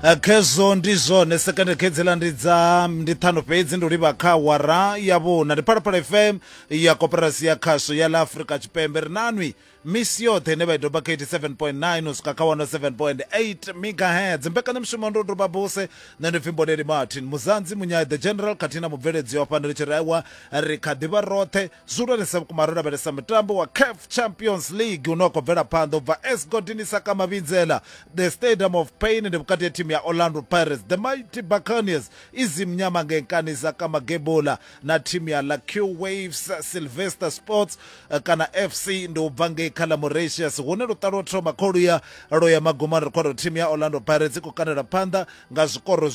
Eh, khezwo ndi zwone sekende khedzela ndi dza ndi ṱhano fhedzi ndi livha kha wara ya vhuna ndi phalaphala fm ya koperasi ya khasho ya la afurika tshipembe ri nanwi misi yoṱhe ine vha i doba kha 87.9 u swika kha 107.8 megahertz mbekanyamushumo ndo doba buse nṋe ndi pfi mboneli martin muzanzi munyai the general khathihi na mubveledzi wa fhano ri tshi rewa ri kha ḓivha roṱhe zwihulwanesa vhukuma ro lavhelesa mutambo wa caf champions league une wa khou bvela phanḓa u bva esgodini saka mavhinzela the stadium of pain ndi vhukati ya thimu ya orlando pirates the mighty buccaneers i zimnyama ngenkani saka magebola na thimu ya lacu waves sylvester sports eh, kana fc ndi u bva ngei kha ḽa moratius hune luṱa lwo thoma kholuya lwo ya magumani ri khou thimu ya orlando pirates i khou kanela phanḓa nga zwikoro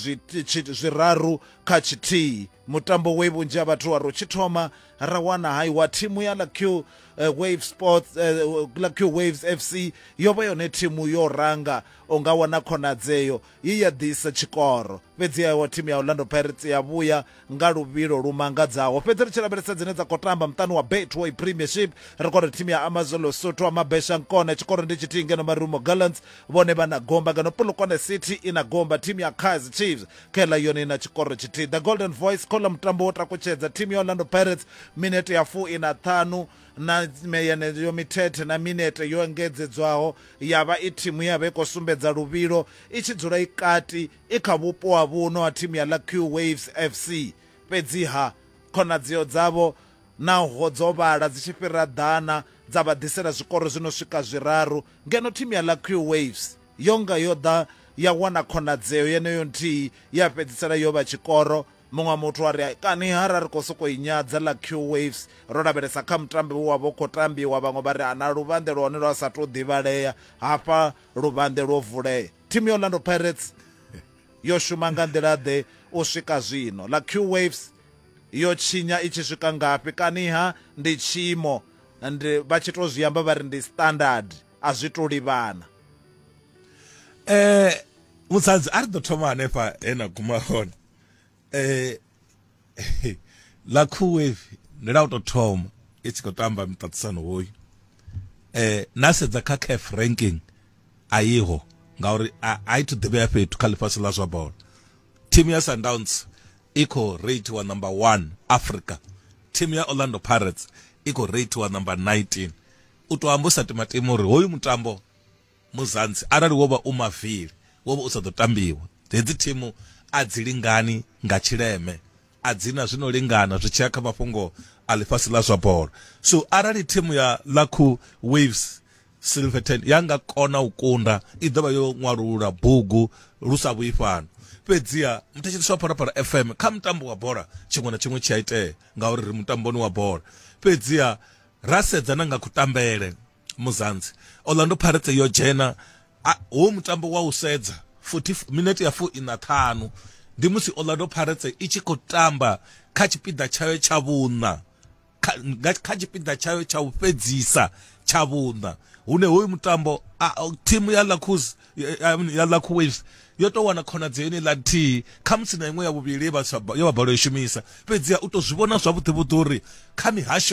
zwiraru kha tshithihi Mutambo we vhunzhi ha vhathu wa ro tshi thoma ra wana hai wa thimu ya Lucky uh, eh, Wave Sports uh, eh, Lucky Waves FC yo vha yone thimu yo ranga u nga wana khonadzeo ye ya ḓisa tshikoro fhedzi ya wa thimu ya Orlando Pirates ya vhuya nga luvhilo lu mangadzaho fhedzi ri tshi lavhelesa dzine dza khou tamba muṱani wa Betway Premiership ri kone thimu ya Amazon Lesotho wa Mabesha Nkona tshikoro ndi tshithihi ngeno Marumo Gallants vhone vha na gomba ngeno Polokwane City i na gomba thimu ya Kaizer Chiefs kela yone i na tshikoro tshithihi the golden voice khola mutambo wo takutshedza thimu ya orlando pirates minete ya fu ina ṱhanu na yeneyo mithethe na minete yo engedzedzwaho ya vha i thimu ya vha i khou sumbedza luvhilo i tshi dzula i kati i kha vhupo ha vhuno ha thimu ya lucky waves fc fhedziha khonadzeo dzavho naho dzo vhala dzi tshi fhira ḓana dza vha ḓisela zwikoro zwi no swika zwiraru ngeno thimu ya lucky waves Yo nga yo ḓa ya wana khonadzeo yeneyo nthihi ye ya fhedzisela yo vha tshikoro. Muṅwe muthu a ri, Kani ha ra ri khou sokou i nyadza ḽa Q-Waves ro lavhelesa kha mutambo we wa vha u khou tambiwa, vhaṅwe vha ri, Ana luvhanḓe lwa hone lwa sa tou ḓivhalea, hafha luvhanḓe lwo vulea. Thimu ya Orlando Pirates yo shuma nga nḓila-ḓe u swika zwino? Ḽa Q-Waves yo tshinya i tshi swika ngafhi? Kani ha ndi tshiimo, ndi, vha tshi tou zwi amba vha ri ndi standard? a zwi to livhana eh musadzi a ri ḓo thoma hanefha he na guma hone eh ḽa khuwevi ndi ḽa u tou thoma i tshi khou tamba miṱaṱisano hoyu eh na sedza kha caf ranking a yiho ngauri a i thu ḓivhea fhethu kha ḽifhasi ḽa zwa bola thimu ya sundowns i khou reitiwa number one africa thimu ya orlando pirates i khou reitiwa number 19 U tou amba u sa timatima uri hoyu mutambo Muzansi arali wo vha u mavili wo vha u sa ḓo tambiwa. Hedzi thimu a dzi lingani nga tshileme, a dzi na zwi no lingana zwi tshi ya kha mafhungo a ḽifhasi ḽa zwa bola. So arali thimu ya Lakhu Waves Silverton ya nga kona u kunda i ḓo vha yo ṅwalulula bugu lu sa vhuyi fhano. Fhedziha muthetshelesi wa Phalaphala FM kha mutambo wa bola tshiṅwe na tshiṅwe tshi a itea ngauri ri mutamboni wa bola. Fhedziha ra sedza na nga kutambele muzanzi orlando pirates yo dzhena a- hu mutambo wa u sedza 40 minete ya fu ina ṱhanu ndi musi orlando pirates i tshi khou tamba kha tshipiḓa tshayo tsha vhuṋa kha nga- kha tshipiḓa tshayo tsha u fhedzisa tsha vhuṋa hune hoyu mutambo a- a- thimu ya lacus ya lacu waves yo tou wana khonadzeo ine ḽa nthihi kha musi na iṅwe ya vhuvhili ye vha sa ba- ye vha balelwa u i shumisa fhedziha u tou zwi vhona zwavhuḓivhuḓi uri kha mihasho